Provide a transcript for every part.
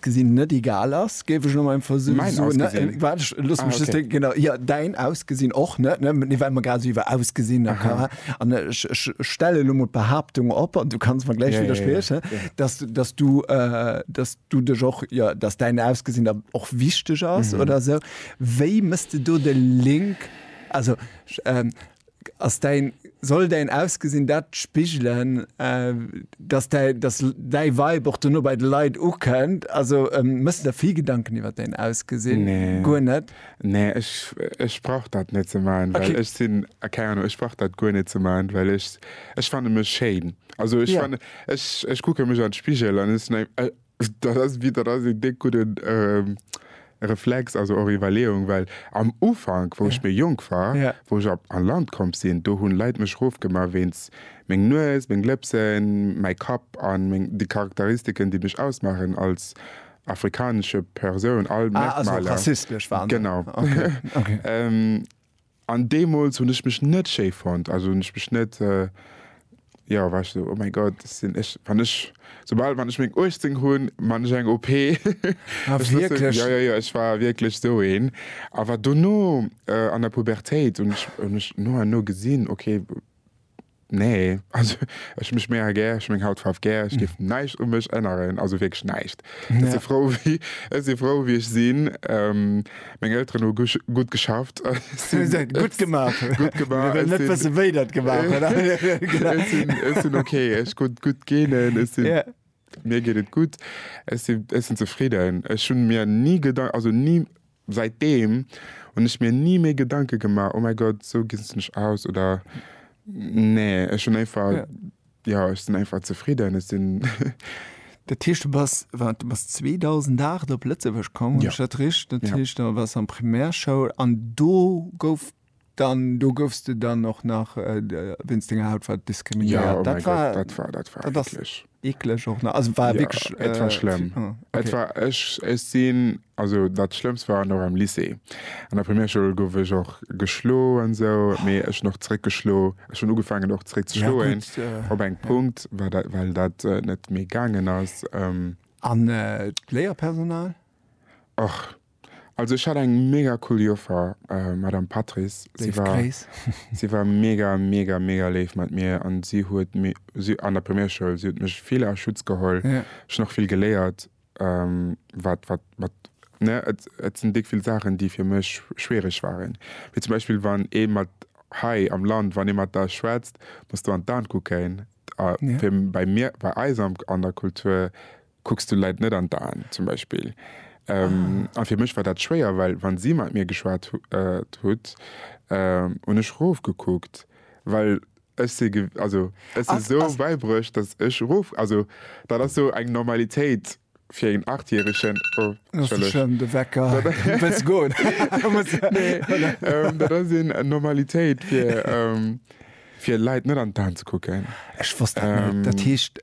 Gesinn net egal ass, géif ech no meinem Versuch Mäin soen. Ausgesinn? Äh, Waart, ech loosse Ah, mech just okay. denken, genau. Jo, däin Ausgesinn och net, ne? Mee well mer grad esou iwwer Ausgesinn a Chara an ech, ech stelle lo mol d'Behaaptung op, an du kanns mer gläich Ja, ja, ja, widderspriechen, ja. dass, dass du, äh, dass du dech och, jo, dass däin Ausgesinn der och wichteg ass oder esou. Wéi méchs de do de Link? Also, ech, ähm, Ass däin, soll däin Ausgesinn dat spigelen, dass däi, dass däi Vibe och dono bei de Leit ukënnt? Also méchs de der vill Gedanken iwwert däin Ausgesinn? Nee. Guer net? Nee, ech, ech brauch dat net ze maachen, well ech sinn, keng Ahnung, ech brauch dat guer net ze maachen, well ech, ech fanne mech schéin. Also ech fanne, ech, ech kucke mech an d'Spigel an ech sinn, Dat ass wéi, dat ass een déck gudden Reflex, also och Iwwerleeung, well am Ufank, wou ech méi jonk war, wou ech op an Land komm sinn, do hunn Leit mech rofgemaach wéinst meng Nues, meng Lëpsen, mäi Kapp an meng, déi Charakteristiken, déi mech ausmaachen als afrikanesche Persoun, all Merkmaler. Ah, also rassistesch waren se. Genau. Okay. An deemools hunn ech mech net schéi fonnt, also hunn ech mech net, jo, war ech esou, oh mäi Gott, dat sinn ech. Wann ech, soubal wann ech meng 18 hunn, man ech eng OP. Ah wierklech? Jo, jo, jo, ech war wierklech esou een. Awer dono an der Pubertéit hunn ech mech no an no gesinn, okay, Nee, also ech hun mech mega gär, ech hun meng Hautfaarw gär, ech géif näischt u mech änneren, also wierklech näischt. Ech si frou, wéi ech si frou, wéi ech sinn. Meng Elteren hu gutt geschafft. Gutt gemaach. Gutt gemaach. Ech wëll net wëssen, wéi der et gemaach hutt. Ech sinn ok, ech hu gutt Genen, ech sinn, mir geet et gutt, ech sinn zefridden. Ech hu mir ni Gedanken, also ni, Säitdeem hunn ech mir ni méi Gedanke gemaach, oh mäi Gott, esou gesinn ech aus oder nee. Ech hunn einfach, jo, ech sinn einfach zefridden. Ech sinn. Dat heescht, du bass, wat, du bass 2008 op Lëtzebuerg komm, hu ech dat richt? Dat heescht, da waars du an Primärschoul an do gouf Dann do goufs de dann och nach wéinst denger Hautfaarf diskriminéiert? Jo, oh mäi Gott, dat war, dat war eeklech. Eeklech och nach, also war wierklech. Jo, et war schlëmm. Et war, ech, ech sinn, also dat Schlëmmst war nach am Lycée. An der Primärschoul gouf ech och geschlo an esou, mee ech hunn och zeréck geschlo. Ech hunn ugefaangen och zeréck ze schloen, op engem Punkt, well dat net méi gaangen ass. An d'Léierpersonal? Och. Also ech hat eng mega cool Joffer, Madame Patrice. Si war, si war mega, mega, mega léif mat mir an si huet mi, si, an der Primärschoul, si huet mech vill a Schutz geholl. Yeah. Ech hunn och vill geléiert, ähm, wat, wat, wat, ne, et, et sinn déck vill Saachen, déi fir mech schwiereg waren. Wéi zum Beispill, wann ee mat, hei am Land, wann ee mat der schwätzt, muss de an d'An kucken. A yeah. fir, bei mir, bei eis am, an der Kultur, Kucks du Leit net an d'Aen, zum Beispill. A fir mech war dat schwéier, well wa si mat mir geschwat hutt, hunn ech rofgekuckt, well ech si, also ech si sou bäibruecht, datt ech rof, also dat ass sou eng Normalitéit fir een Achtjäregen. Oh, entschëllegt. De Wecker. Wëlls goen? Dat ass eng Normalitéit fir Leit net an d'Aen ze kucken. Ech wosst dat net. Dat heescht,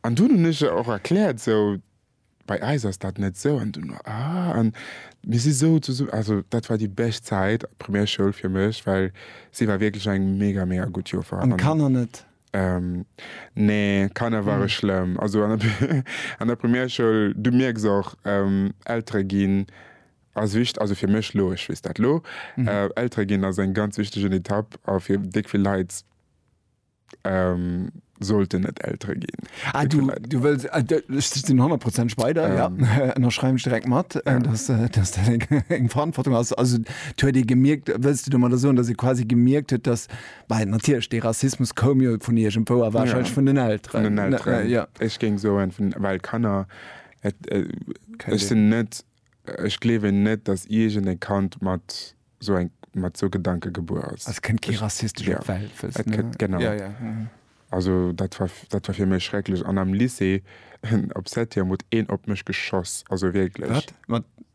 An dunn hunn ech der och erkläert, esou, bei eis ass dat net esou. An dunn war, ah, an mir si esou zesum-, also dat war déi bescht Zäit, Primärschoul fir mech, well si war wierklech eng mega, mega gutt Joffer. An d'Kanner net? Nee, d'Kanner ware schlëmm. Also an der, an der Primärschoul, du mierks och, Eltere ginn ass wicht-, also fir mech elo, ech weess dat elo, Eltere ginn ass eng ganz wichtegen Etapp a fir déck vill Leit, Sollten et Eltere ginn, déi vläicht. Du wëlls, ech sinn honnertprozentig bei der, jo, ënnerschreiwen ech direkt mat, dass dat eng Verantwortung ass. Also, et huet ee gemierkt, wëlls de domadder soen, dass ee quasi gemierkt huet, dass, well natierlech, dee Rassismus koum jo vun iergendwou a warscheinlech vun den Elteren. Vun den Elteren, jo. Ech géing soen, vun, well Kanner, ech sinn net, ech gleewen net, dass iergend e Kand mat. sou eng mat sou Gedanke gebuer ass. Also kënnt kee rassistesch op d'Welt, wëlls Et du? kënnt, genau. Ja, ja, mhm. Also dat war, dat war fir mech schrecklech. An am Lycée, op Septième huet een op mech geschoss, also wierklech. Wat? Mat